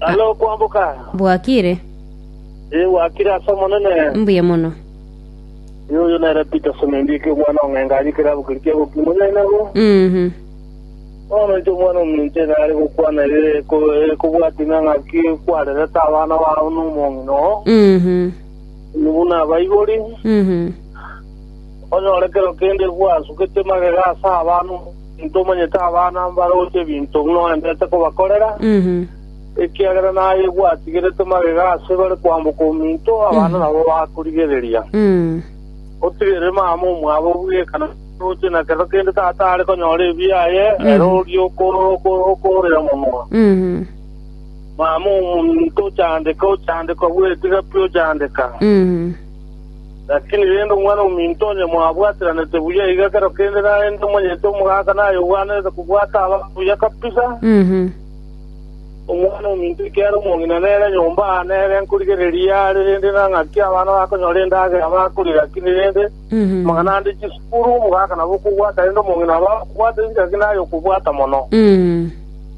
Are okwamboka? Bwakire? Ee, gwakire ase Omonene. Mbuya mono. Ee, oyo nere Peter Semendi eke omwana o Ng'enga aria ekerabo keria kia Bokimo nyayi nabo. Mhm. Bono inche omwana ominche nare gokwana ere eko- ekobwati ng'a ng'aki kwarerete abana bao nomong'ina oo, Mhm. nigo nabaigori. Mhm. Onyore kero kende gwasukete magega ase abana omonto omanyete abana mbaroche ebinto buna oenderete kobakorera, ekiagera naye gwatigerete magega ase bare kwamboka ominto, abana nabo bakorigereria. Otigerere mama omwabo bweka na omooroche, na kero kende tata are konyora ebibe aye, ere oria okoorera mono. Mama omonto ochandeka, ochandekwa bw'etiga pi ochandeka. Lakini rende Omwana-o-minto onye mwabwatiranete buya iga ekero kende narende omonyete omogaka naye obwanete kobwata abanto buya kabisa, Omwana-o-minto ekiagera omong'ina nere nyomba aa nere nkorigereria are, rende na ng'aki abana bakonyora endagera bakori, lakini rende amang'ana ande chisukuru omogaka nabo okobwata rende omong'ina abe agokobwata enchera ki naye okobwata mono.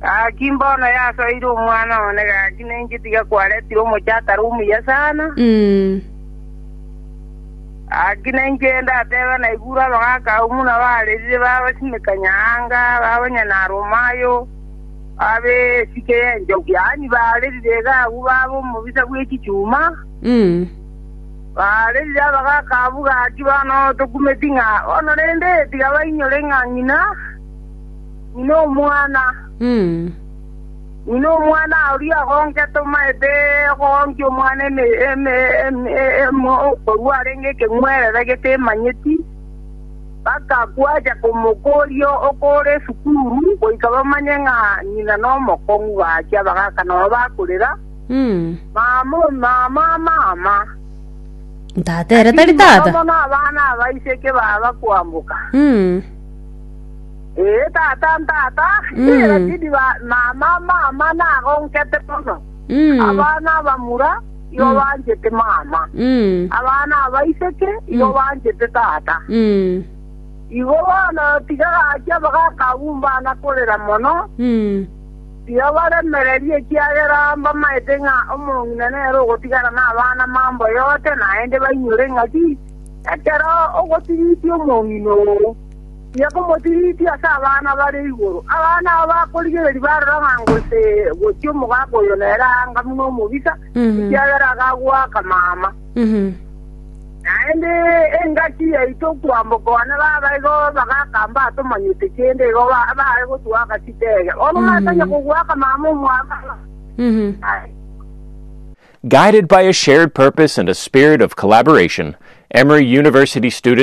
Gaki mbono yasoeire omwana one, gaki ninki tiga kwaretire omochie atari omuya sana? Gaki ninki gende atebe naigure abagaka abwo buna barerire babasimekania anga, babanyana aruma ayo, babe esike y'enchogu, yaani barerire iga agwo babe omobisa bw'echichuma? Barerire abagaka abwo, gaki bono tokumeti ng'a bono rende tiga bainyore ng'a ng'ina. Ng'ina omwana. Ng'ina omwana oria ogonkete omanyete ogoonkia omwana eme- eme- eme- emo korwa arenge ekeng'werere getemanyeti, bakakwacha komokoria oko ore esukuru, goika bamanye ng'a ng'ina nomokong'u gachia bagaaka nonya bakorera, Mama, o mama, mama. Tata ere tari Lakini mono tata. mono abana abaiseke baba kwamboka. Mm. Ee, tata ntata, Rashidi ba mama mama nagonkete mono. Abana abamura igo banchete mama. Abana abaiseke igo banchete tata. Igo bono tiga gachia bagakabumba na korera mono, tiga baremererie ekiagera mbamaete ng'a omong'ina nere ogotigara nabana mambo yote naende bainyore ng'a ki ekero ogotigitia omong'ina oo. Tiga komotiriti ase abana bare igoro. Abana aba bakorigereria barora ng'a gose gochia omogaka oyo nere aanga buna omobisa, ekiagera akagoaka mama. Naende engaki yaito kwamboka one baba igo abagaka mbatomanyete kende, igo ba- baye gotuaka chitege. Bono mwatanya kogoaka mama omwabana. Aye. Guided by a shared purpose and a spirit of collaboration, Emory University students